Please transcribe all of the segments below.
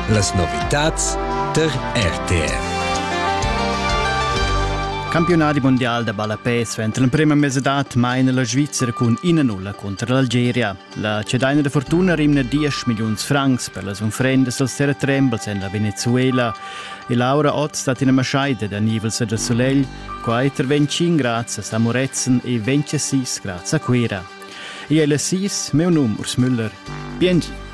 Las novitads tar RTR. Campionadi mondial da ballapè svent l'emprema mesedad maina la Svizzera cun ina nulla cunter l'Algeria. La cedaina da fortuna rimna 10 milliuns francs per las unfrendas als terra trembles en la Venezuela e Laura Ott stat ina maschaida da nivels da solegl, quai intervegn 5 grads a Samorezen e 26 grads a Cuera. Io è Sis, meu num Urs Müller. Biengi.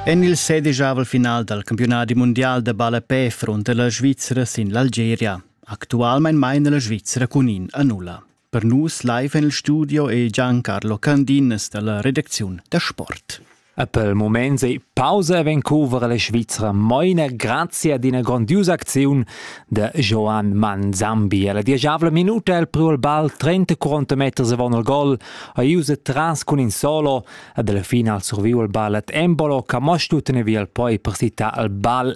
En il sedijavel final dal campiunadi mundial de ballapè fronte la Svizzera sin l'Algeria. Actualmein maina la Svizzera cun in a nulla. Per nus live en il studio è Giancarlo Candinas dalla redacziun da sport. E pel moment sei pausa e ven covra la Svizzera moina grazie ad ina grandiosa acziun de Joan Manzambi. La diagavla minuta el priu il ball 30-40 meters avon il gol, a Iuse tras cun in solo, ad la final surviu il ball ad Embolo, che mo stutene via il poi per sita il ball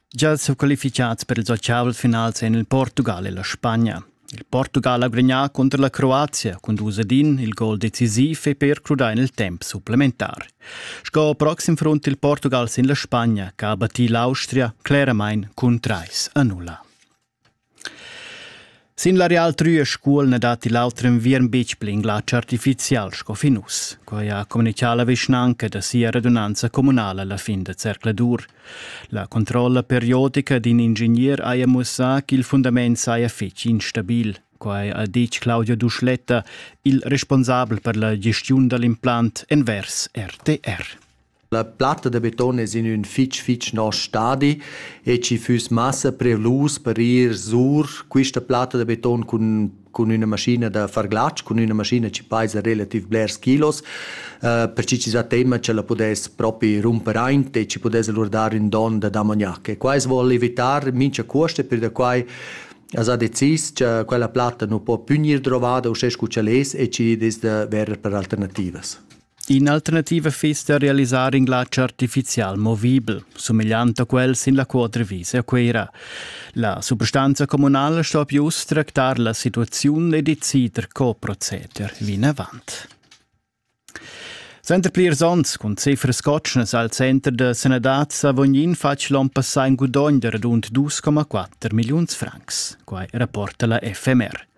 Gia sutqualificads per ils ottavels finals en il Portugal e la Spagna. Il Portugal ha gudagnà cunter la Croazia cun dus ed in il gol decisiv e per crudar en il temp supplementar. Sco proxim front il Portugal sin la Spagna, che ha battì l'Austria cleramain cun trais a nulla. Sin l'areal Trüe Scuol na datti l'auter enviern betg pli in glatsch artifizial sco fin uss. Quai ha communitgà la vischnanca da sia radunanza communala la fin da zercladur. La controlla periodica d'in ingegner haja mussà ch'il fundament saja fetg instabil. Quai ha ditg Claudio Duschletta, il responsabel per la gestiun da l'implant envers RTR. La platta da beton es in ün fich fich nosch stadi e chi füss massa prelus per ir sur quista platta da beton cun cun üna maschina da far glatsch, cun üna maschina chi paisa relativ blers kilos, uh, perche chi s'ha tema cha la pudess propi rumper aint e chi pudess alura dar ün don da damognac. E quai as voul evitar mincha cuost e pür da quai as ha decis cha quella platta nu po pü gnir drovada uschè scu ch'el es e chi dess da verer per alternativas. In'alternativa fiss da realisar in glatsch artificial movibel, sumegliant a quel sin la Quadrivisa a Cuira. La substanza communala sto pius tractar la situaziun e decider co proceder vinavant. Center plirs ons cun cifras cotschnas al center da sanadad Savognin fatg l'on passà in gudogn da radund 2,4 milliuns francs. Quai rapporta la FMR.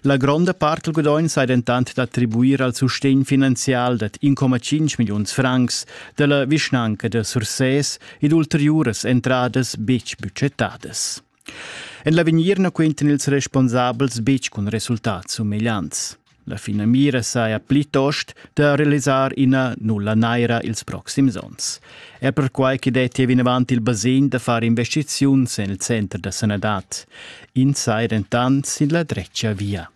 La gronda part dal gudogn sai dentant d'attribuir al sustegn finanzial dad 1,5 milliuns francs da la vischnanca da Sursès ed ulteriuras entradas betg budgetadas. En l'avegnir na quentan ils responsabels betg cun resultats sumegliants. La finamira saja plitost da realisar ina nulla naira ils proxims onns. Er perquai che detti vinavant il basegn da far investiziuns en il center da sanadad. ins sai dentant sin la dretga via.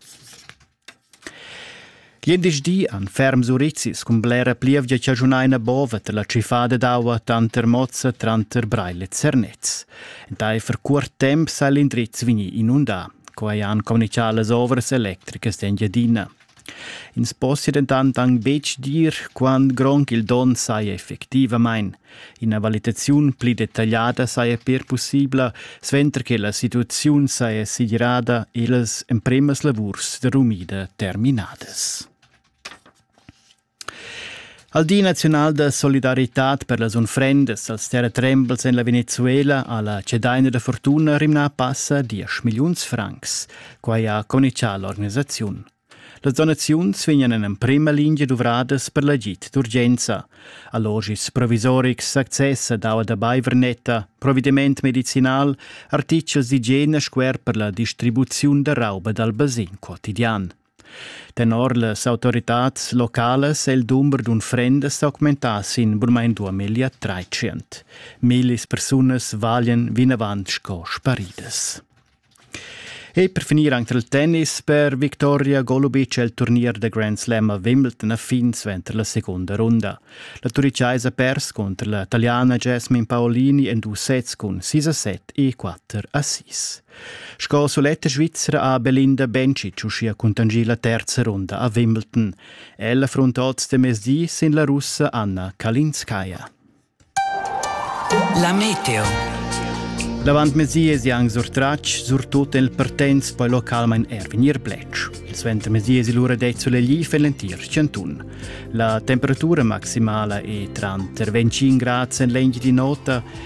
Glindesdi an ferms urizis cun blera plievgia chaschunaina bova la trifada d'aua tanter Mozza tranter Breil e Zernez. Entaifer cuort temp sa l'indriz vegni inundà. Quai han communichà las ovras electricas d'Engiadina. Ins possia dentant anc betg dir quant grond ch'il donn saja effectivamain. Ina valitaziun pli detagliada saja per pussibla, suenter che la situaziun saja segirada e las empremas lavurs da rumida terminadas. Al Di naziunal da solidaritad per las unfrendas als terratrembels en la Venezuela ha la cedaina da fortuna rimnà passa diesch milliuns francs. Quai ha conichà l'organisaziun. Las donaziuns vegnan en emprima lingia duvradas per l'agid d'urgenza. Allogis provisorics, access ad aua da baivernetta, provediment medicinal, artitgels d'igiena scuer per la distribuziun da rauba dal basin quotidian. Tenor las autoritads localas è il dumber d'unfrendas s'augmentà sin burmain duamillia tratschient. Millis persunas valian vinavant sco sparidas. E per finir anche il tennis per Victoria Golubic è il turnier da Grand Slam a Wimbledon a fin suenter la segunda runda. La turicaisa ha pers contro la taliana Jasmine Paolini en dus sets cun 6 a 7 e 4 a 6. Sco suletta Svizra ha Belinda Bencic uschia cuntanschì la terza runda a Wimbledon. Ella frunta oz de mezdi sin la russa Anna Kalinskaya. La meteo. L'avantmezdi è anche surtratg, surtut nel Pertens, poi localmain er vegnir bletsch. Il suentermezdi è l'ura dei soleglif en l'entir Chanton. La temperatura maximala è tranter 25 gradi en l'engio di nota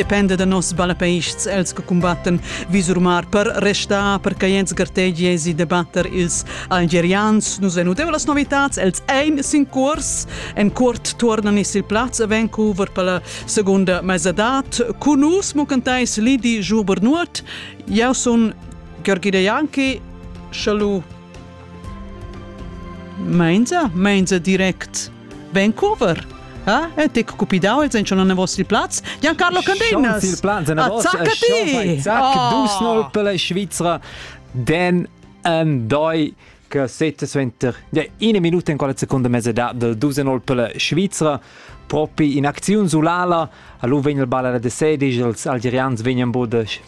dependa da nos ballapeists els che combattan visurmar per restar per che jens gartegie si debatter ils algerians nus en udeu las novitats els ein sin curs en cuort tuornan is il plaz a Vancouver per la seconda mesadat con nus mo cantais Lidi Joubert Nuot eu sun Georgi De Janki Chalut Meinza Meinza direct Vancouver. Eh? E te cupidau els en schon an vostri plaz? Giancarlo Candenas. Il plaz en vostri. Zac Dusnol per la Svizzera. Den an doi che sette suenter ja, ina minuta in quella seconda mesedad del Dusenol per la Svizzera propi in acziun sulala a lu vegn il ball alla de sedici els algerians vegnan bod